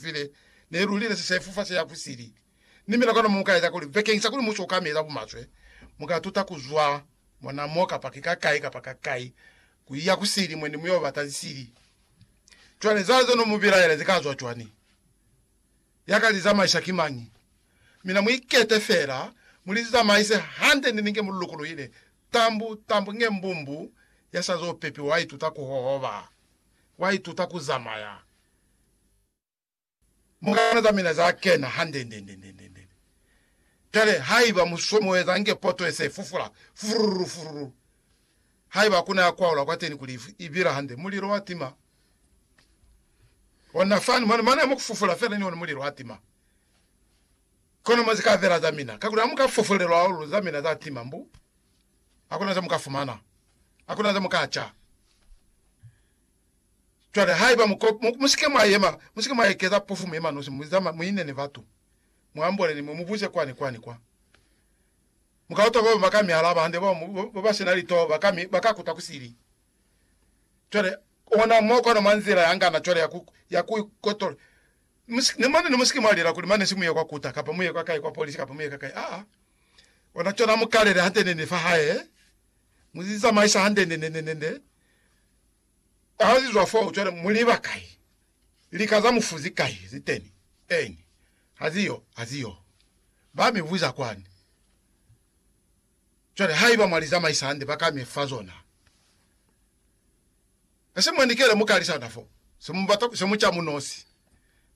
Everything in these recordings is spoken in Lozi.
Pili ne lu lile sisefufa se ya ku sili, ni mina kona mu ka eza kuli bekeñisa kuli mu si oka meza bumaswe, mu ka tuta ku zwa mona mo kapa ki ka kai kapa ka kai ku iya ku sili mwe ni mu yo bata lisili. Cwale za ze no mu bilaela zi ka zwa cwani? Ya ka li zamaisa ki mañi? Mina mu ikete fela, mu li zamaise hande ni ninge mu lukuluhile tambu, tambu nge mbumbu ya sa zo pepiwa. Wa ituta ku hohoba. Wa ituta ku zamaya. Mukana za mina za kena handendendendendende. Cwale, haiba mu somoeza nge poto ye se fufula, furururu, furururu, haiba hakuna ya kwaula kwateni kuli i bila hande, mulilo wa tima. Ona fani, mwana, mwana mu kufufula fela ni ona mulilo wa tima. Kono mo zika bela za mina, kakuli hamuka fufulelwa hahulu za mina za tima, mbu hakuna za muka fumana, hakuna za muka ca. Cwale haiba mu, mu, musike mwa yema, musike mwa ekeza pofumu yemanosi, mu zama, mu ine ni batu, mu ambole ni mwe, mu buze kwani, kwani kwa. Mu ka utwa baba ba ka mi alaba hande, ba, ba ba sina litoho ba ka mi, ba ka kuta ku sili. Cwale, ona mo kona mwa nzila ya ngana cwale ya ku, ya ku ikotola. Musike, ni mone, ni musike mwa lela kuli mane si mu ye kwa kuta, kapa mu ye kwa kai, kwa polisi, kapa mu ye ka kai. Aa. Ona cona, mu kalele hande nende fa hae, mu zamaisa hande nende, nende, nende. Hazizwa foo, cwale muliba kai? Lika za mufu zikai ziteni? Eni, haziyo, haziyo. Ba mi buza kwani. Cwale, haiba mwa li zamaisa hande, ba ka mi fa zona. E se mwa ni kele mu kalisana fo, se mu bata, se mu ca munosi.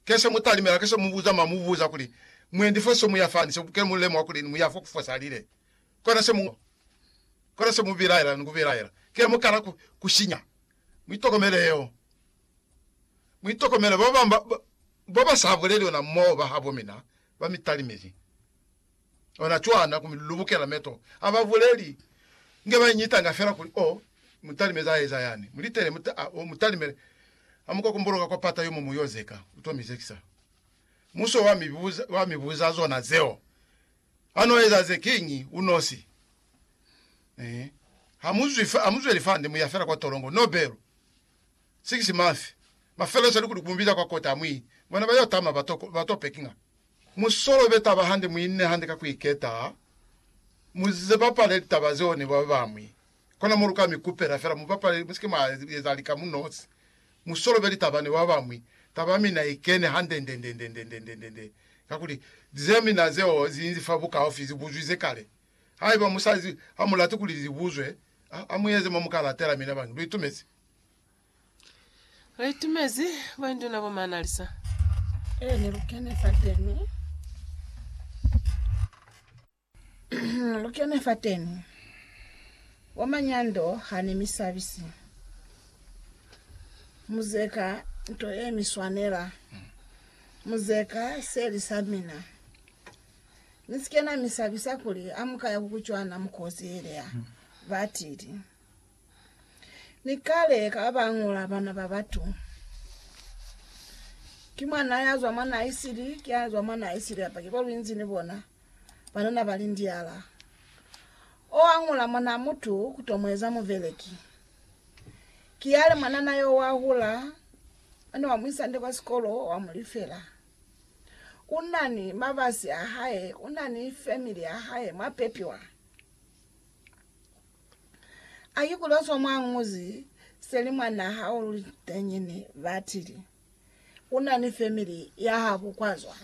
Ke se mu talimela, ke se mu buza mwa mu buza kuli, Mwendi fo se mu ya fani, se ke mu lemuha kuli ni mu ya fo ku fosalile? Kona se mu, kona se mu bilaela ni ku bilaela, ki ha mu kala ku, ku sinya. Mu itokomele yeo. Mu itokomele ba babañi ba, ba, ba ba sa buleli ona moo ba habo mina, ba mi talimezi. Ona cwana, ku mi lubukela meto. Ha ba buleli, nge ba iñitanga fela kuli, Oh, mu talimezi a eza yani. Mu litele, mu ta, oh, mu talimele. Ha mu ka kumbuluka kwa pata yo mo mu yo zeka, u to mi zekisa. Muso wa mi buza, wa mi buza zona zeo. A no eza ze kiñi u nosi. Ehe. Ha mu zwi, ha mu zweli fande, mu ya fela kwa tolongo. No belu. Six month. Mafelo sa likuli ku mu biza kwa kota, ha mu i. Bona ba yo tama, ba to, ba to pekinga. Mu solobe taba hande, mu ine hande ka ku iketa, mu ze bapale litaba zeo ni ba bañwi. Kona mo lu ka mi kupela fela mu bapale, mu si ke mwa eza lika mu nosi. Mu solobe litaba ni ba bañwi. Taba ya mina i kene handendendendendendendendende, kakuli ze mina zeo zi nzi fa bukaufi, zi buzwize kale. Haiba mu sa, ha mu lati kuli li buzwe, ha, ha mu eze mo mu ka latela mina bañwi. Lu itumezi? Lu itumezi, Boinduna bo Maanalisa? Eeni, lu kene fateni. Lu kene fateni kwa manyando hane mi sabisi. Mu zeka nto ye mi swanela. Mu zeka seli sa mina. Ni si ke na mi sabisa kuli ha mu ka ya ku ku cwana mu kozielea, ba tili. Ni kale ka ba bangula bana ba batu. Ki mwana ya zwa mwa naisiri, ki ya zwa mwa naisiri apaki kwa lu inzi ni bona. banana ba lindiala. O añula mwanaa mutu ku to mu eza mubeleki. Ki yale mwanana yo wa hula, o ne wa mu isa nde kwa sikolo, wa mu lifela. U na ni mabasi a hae, u na ni family ya hae mwa pepiwa. A ki kuli o swa mwa Nguzi, seli mwanaa hao luli tenyene, ba tili. U na ni family ya habo kwa zwa.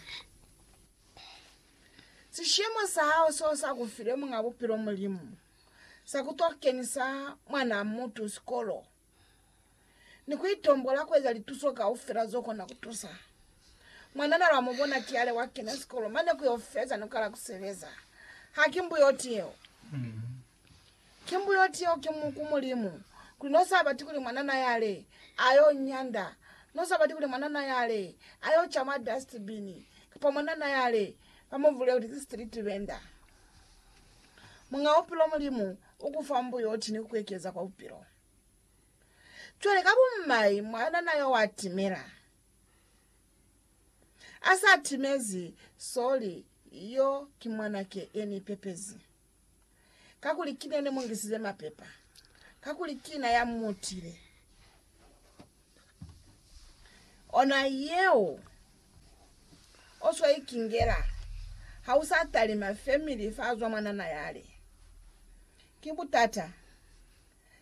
Sishemo sa hao seo sa ku file Muñ'a Bupilo Mulimu, sa ku to kenisa mwanaa mutu sikolo, ni ku itombola ku eza lituso kaufela zo kona ku tusa. Mwanana lwa mu bona ki ale wa kena sikolo mane ku yo feza ni ku kala ku sebeza, haki mbuyo yeo. Ki mbuyoti yeo ki mu, ku Mulimu, kuli no sa bati kuli mwanana yale ayo nyanda, no sa bati kuli mwanana yale ayo ca mwa dust bin, kapa mwanana yale ba mu vule kuli ki street vendor. Muñ'a Bupilo Mulimu u ku fa mbuyoti ni ku ku ekeza kwa Bupilo. Cwale ka bumai mwanana yo wa timela. A sa timezi, sorry, yo ki mwanake ye ni pepezi. kakuli ki nene mu ngisize mapepa, kakuli kina ya mutile. Ona yeo oswa ikingela ha usa talima family fa zwa mwanana yale. Ki butata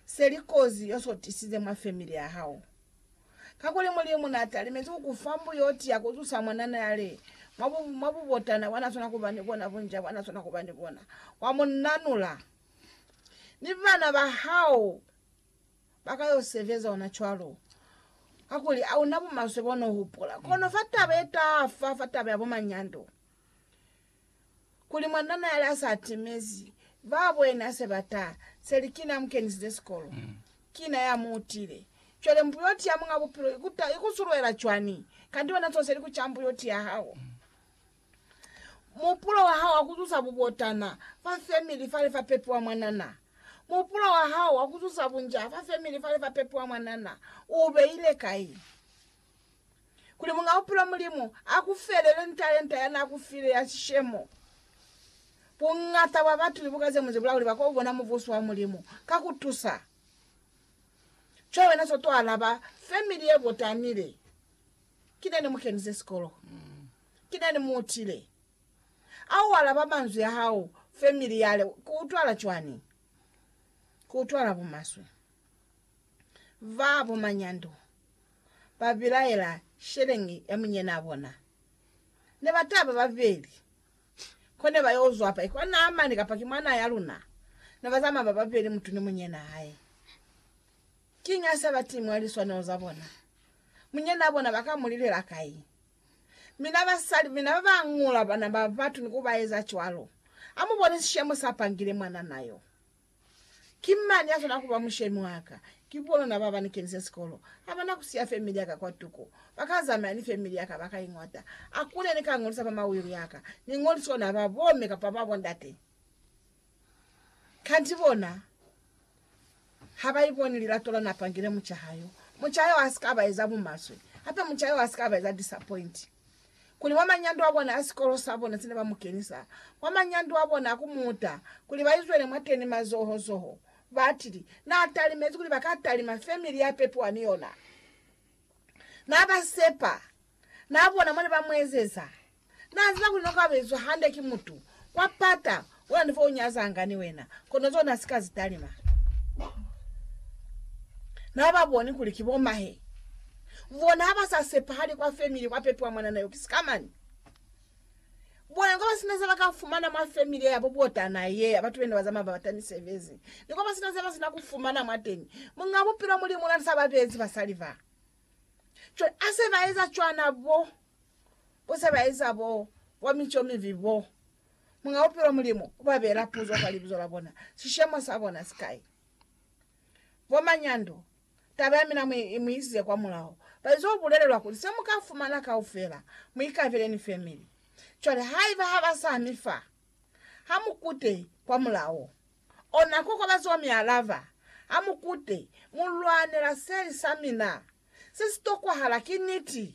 seli kozi yosotisize mwa family ya hao. Kakuli Mulimu na talimezi ku ku fa mbuyo o tiya ku zusa Mwanana ya li, mwa bu, mwa bubotana bwa na swana ku ba ni bona, bunca bwa na swana ku ba ni bona, wa mu nanula. Mi bana ba hao ba ka yo sebeza ona cwalo, kakuli a u na bumaswe bo no hupula. Kono fa taba ye taha fa, fa taba ya bumanyando, kuli mwanana yale a sa timezi ba bwena se ba ta, se li kina a mu kenisize sikolo, kina ya mu utile. Cwale mbuyoti ya Muñ'a Bupilo i ku ta, i ku sulwela cwani? Kanti wena zonse li ku ca mbuyoti ya hao. Muhupulo wa hao wa ku zuza bubotana fa femili fale fa pepiwa mwanana. Muhupulo wa hao wa ku zuza bunjaa fa femili fale fa pepiwa mwanana u beile kai? kuli Muñ'a Bupilo Mulimu a ku felele ni talenta ya n'a ku file ya sishemo. Buñata bwa batu libuka ze ñwi ze bula kuli ba k'o bona Mubuso wa Mulimu ka ku tusa co wena s'o t'o alaba femili ye botanile. Ki ne ni mu kenise sikolo. Ki ne ni mu utile. A u alaba manzwi a hao femili yale, ku utwala cwani? Ku utwala bumaswe. ba bomanyando ba bilaela sheleñi ya munyenaa bona. Ne ba taba babeli, kone ba yo zwa pa ikwa Naamani kapa ki mwanaa ya luna. Ne ba zamaya ba babeli mutu ni munyenaa hae. Kiñi ha se ba ti mwa liswanelo za bona? Munyenaa bona ba ka mu lilela kai? Mina basali, mina ba ba ngula bana ba batu ni ku ba eza cwalo. Ha mu bone sishemo sa pangile mwanana yo. Ki mañi ya swana kuba mushemi wa ka? Ki bonuna baba ni kenise sikolo. Ha bana kusiya family ya ka kwa tuku. Ba ka zamaya ni family ya ka ba ka iñata. A ku ne ni ka ngolisa mama will ya ka, ni ngolisi ona ba bomme kapa ba bondate. Kanti bona ha ba iboni lilato la na pangile muca ha yo. Muca yo ha si ka ba eza bumaswe. Hape muca yo ha si ka ba eza disappoint. kuli mwa manyando a bona a sikolo sa bona se ne ba mu kenisa mwa manyando a bona a ku muta kuli ba izwele mwateni mazoho zoho, batili, Na talimezi kuli ba ka talima femili ya pepiwa ni yona. Na ba sepa. Na bona mone ba mu ezeza. Na ziba kuli no ka bezwa hande ki mutu wa pata Wena ni fo u nyazanga ni wena, kono zona ha si ka zi talima. Na ha ba boni kuli ki bo mahe. Bona ha ba sa sepahali kwa family kwa pepi wa mwanana yo. Ki sikamani. Bona ni kwa ba sina ze ba ka fumana mwa family ya bo botana ye ya batu bene ba zamaya ba bata misebezi. Ni kwa ba sina ze ba sina ku fumana mwateñi. Muñ'a Bupilo Mulimu na sa ba beezi basali ba. Cwale ha se ba eza cwana bo, bo se ba eza bo, bo mico mibi bo, Muñ'a Bupilo Mulimu uba beela puzo kwa libizo la bona, sishemo sa bona sikai. Bo Manyando, taba ya mina mu i isize kwa mulaho. Ba ize ku bulelelwa kuli, Se mu ka fumana kaufela, mu ikabele ni family. Cwale haiba ha ba sa mi fa, ha mu kute kwa mulaho. Ona kokobazo mi alaba, Ha mu kute, mu lwanela seli sa mina. Se si tokwahala ki niti.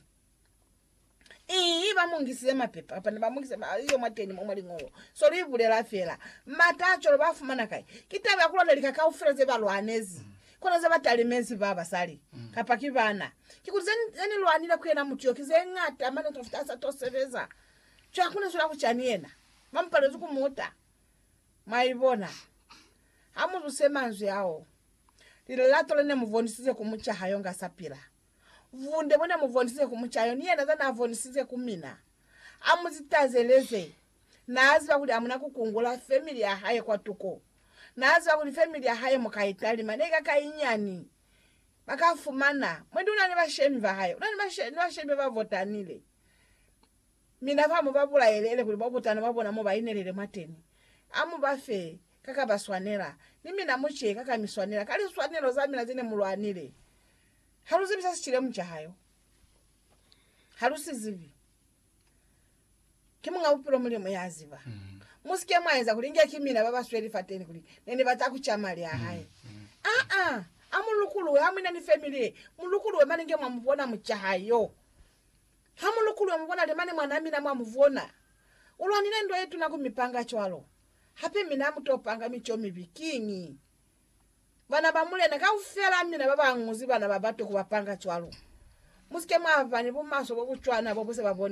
Ii, ba mu ngisize mapepa kapa ne ba mu ngisize ma iyo mwa teni mwa liñolo. So lu ibulela fela. Mata a cwalo ba fumana kai? Ki taba ya ku lwata lika kaufela ze ba lwanezi. Kono ze ba talimezi ba basali, kapa ki bana. Kikuli ze, ze ni lwanile ku yena mutu yo ki ze ñata mane ku to fita ha sa to sebeza. Cwale ku ni zula ku cani yena? Ba mu palezi ku muta. Mwaibona? Ha mu zuse manzwi ao, lilato le ne mu bonisize ku muca ha yo nga sa pila. Bunde bo na mu bonisize ku mucayo ni yena za na bonisize ku mina. A mu zitazeleze. Na ziba kuli a muna ku kungula family ya hae kwatuko. Na ziba kuli family ya hae mu ka italima ne ka ka inyani. Ba ka fumana. Mwendi una ni bashemi ba hae. Una ni bashemi ba ba botanile. Mina fa mu ba bulaele ele kuli bo butana ba bona mo ba inelele mwateni. A mu ba fe ka ka ba swanela. Ni mina mu ce ka ka mi swanela, ka liswanelo za mina ze ne mu lwanile. Ha lu zibi sa si cilemu ca hae ho. Ha lu si zibi. Ki Muñ'a Bupilo Mulimu ya ziba. Mu si ke mwa eza kuli inge ki mina ba ba sweli fateni kuli ne ni bata ku ca mali a hae. Aa! A mu lukuluwe, ha mwina ni family ye. Mu lukuluwe mane inge mwa mu bona mu ca hae yo. Ha mu lukuluwe mu bona li mane mwan'a mina mwa mu bona. U lwanile ndwa ye tuna ku mi panga cwalo. Hape mina a mu to panga mi co mibi. Kiñi? Bana ba mulena kaufela mina ba ba ñuzi bana ba batu ku ba panga cwalo. Mu si ke mwa ba ni bumaswe bo bu cwana bo bu se ba bonisa.